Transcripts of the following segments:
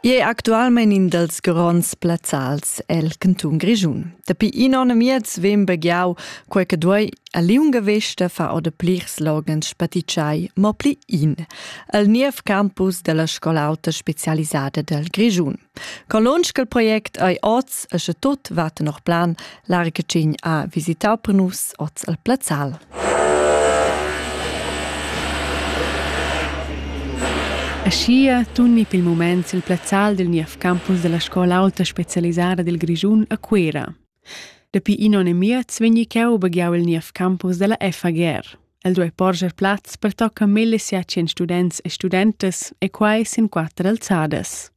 I è actualmain in dals gronds plazzals el cantun Grischun. Dapi in onn e miez vegn begiau quei che duei a liunga vesta far oder plirs loghens spatitschai, mo pli in, al niev campus della scola auta specialisada del Grischun. Con lunsch il project ei oz e sche tot va tenor plan L'argecin ha visitau per nus oz al Plazzal. Aschia tunni per il moment il plazzal dil niev campus della scola alta specialisada dil Grischun a Cuera. Dapi in onn e miez vegni cheu baghiau il niev campus della FAGR. El duei porscher plaz per tocca mille siatien students e studentas e quai sin quatter alzadas.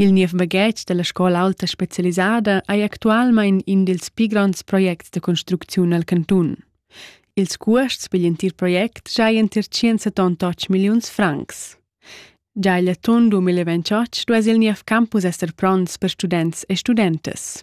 Il niev baghetg dalla scola aulta specialisada ei actualmein in dils pli gronds projects da construcziun el cantun. Ils cuosts pigl entir project giaien tier 178 milliuns francs. Già egl atun 2028 duess il niev campus esser pronts per students e studentas.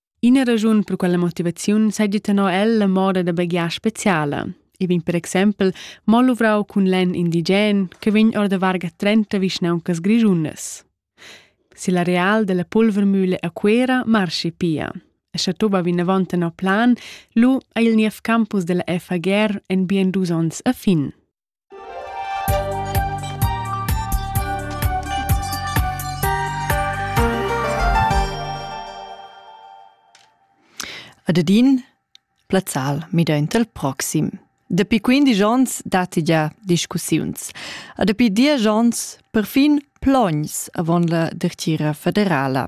Ina raschun per quella motivaziun seigi tenor el la moda da baghiar speciala. E vegn per exempel mo luvrau cun lenn indigen che vegn or da varga 30 vischnauncas grischundas. Se la real della pulvermühle a Cuera marschi pia. E sche toba vinavant tenor plan, lu ei il niev campus della FAGR en bien dus onns a fin. Ad adin plazzal midaint al proxim. Dapi 15 ons datti gia discussiuns. A dapi 10 ons perfin Plogns avon la dertgira federala.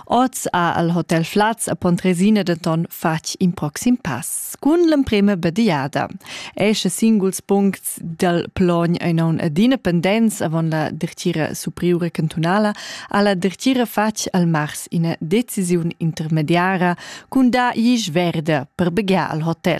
Oz ha el hotel Flaz a Pontresina denton fatg in proxim pass cun l'emprema bediada. Esche singuls puncts dal Plogn ein aun adina pendents avon la dertgira superiura cantunala ha la dertgira fatg al mars ina decisiun intermediara cun da gis verde per begiar al hotel.